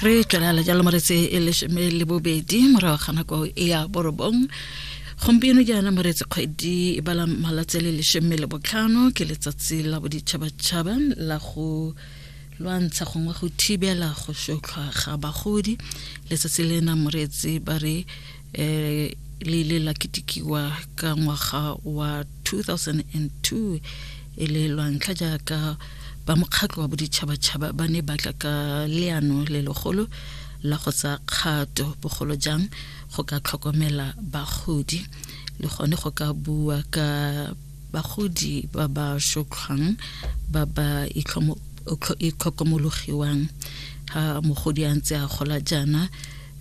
re tswelela jalo moretse e lesome le bobedi morago ga nako e ya borobong gompieno jaana moretse kgwedi e bala malatsi le lesome le botlhano ke letsatsi la boditšhabatšhaba la go lwantsha gongwe go thibela go sotlhwa ga bagodi letsatsi lena moretse ba re eh, le ile la ketikiwa ka ngwaga wa 2002 e le lwantlha jaaka ba mokgatlho wa boditšhabatšhaba ba ne ba tla ka leano le legolo la go tsa kgato bogolo jang go ka tlhokomela bagodi le gone go ka bua ka bagodi ba ba shotlhwang ba ba itlhokomologiwang ha mogodi a ntse a gola jaana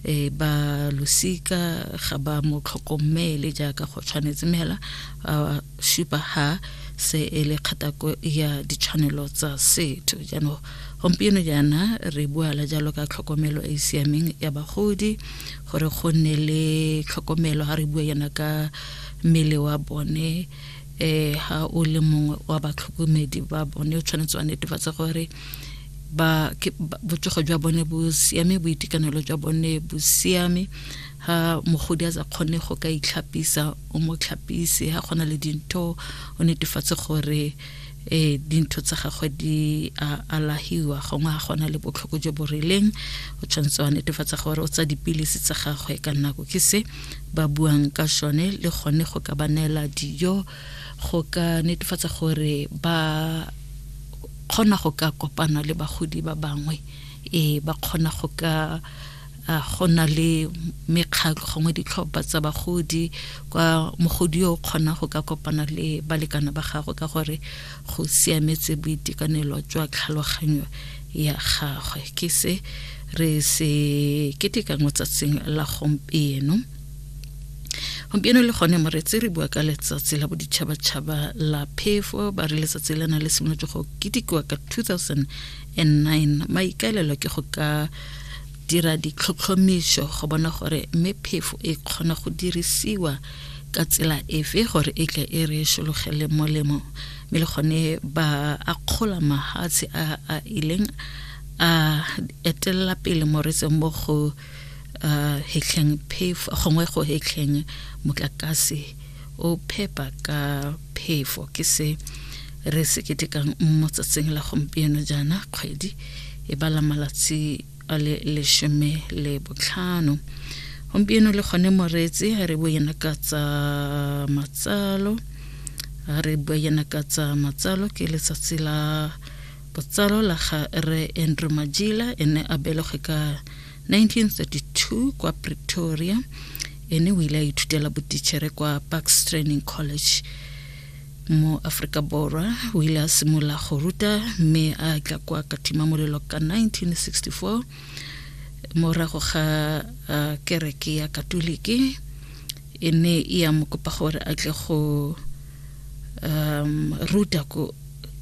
e ba losika ga ba mo tlhokomele jaaka go tshwanetse mme hela a supa ha se e le kgatako ya ditshwanelo tsa setho jaanong gompieno jaana re buala jalo ka tlhokomelo e e siameng ya bagodi gore go nne le tlhokomelo ga re bua yana ka mmele wa bone eh ha o le mongwe wa batlhokomedi ba bone o tshwanetse wa netefatsa gore ba ke botsogo jwa bone bo siame boitekanelo jwa bone bo siame ha mogodi a sa kgone go ka itlhapisa o mo tlhapise ha gona le dintho o netefatse gore eh dintho tsa gagwe di a alahiwa gongwe ga gona le botlhoko jo bo rileng o tshwanetse wa netefatsa gore o tsa dipilisi tsa gagwe ka nako ke se ba buang ka sone le gone go ka ba neela dijo go ka netefatsa gore ba kgona go ka kopana le bagodi ba bangwe e ba kgona go ka go na le mekgatlho gongwe ditlhopha tsa bagodi kwa mogodi yo o kgona go ka kopana le balekane ba gagwe ka gore go siametse boitekanelo jwa tlhaloganyo ya gagwe ke se re se ketekang tsatsing la gompieno gompieno le gone moretse re bua ka letsatsi la boditšhabatšhaba la phefo ba re letsatsi le na le simolotse go ketikiwa ka 2009 maikaelelo ke go ka dira ditlhotlhomišo go bona gore mme phefo e kgona go dirisiwa ka tsela efe gore e tle e re šologele molemo mme le gone ba akgola mahatshe a a ileng a etelela pele moretseng mo go uh, hetlheng phefo gongwe go hetlheng motlakase o phepa ka phefo ke se re se ketekang mo tsatsing la gompieno jaana kgwedi e bala malatsi a le lesome le botlhano gompieno le gone moreetsi a re boyena ka tsa matsalo a re boyena ka tsa matsalo ke letsatsi la Botsalo la ga Rre Andrew Majila e ne a belegwe ka 1932 kwa Pretoria ene o ile a ithutela botichere kwa Parks Training College mo Afrika Borwa o ile a simolola go ruta mme a tla kwa katima molelo ka 1964 morago ga uh, kereke ya katoliki e ne e ya mo kopa gore a tle go um, ruta ko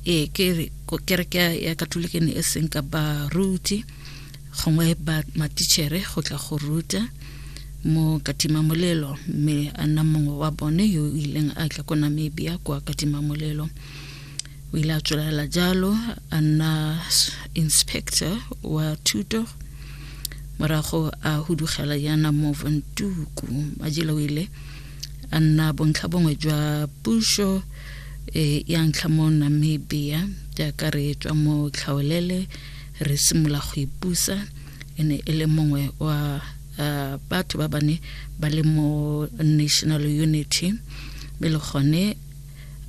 ee ke re kereke ya katolike ne e seng ka baruti gongwe ba matichere go tla go ruta mo katima molelo mme a nna mongwe wa bone yo o ileng a tla ko namibia kwa katima molelo o ile a tswelela jalo a nna inspector wa thuto morago a hudugela yana mo vantuku majela o ile a nna bontlha bongwe jwa puso e ya ntlha mo namibia jaaka re tswa mo tlhaolele re simolola go ipusa e ne e le mongwe wa uh, batho ba bane ba le mo national unity mme le gone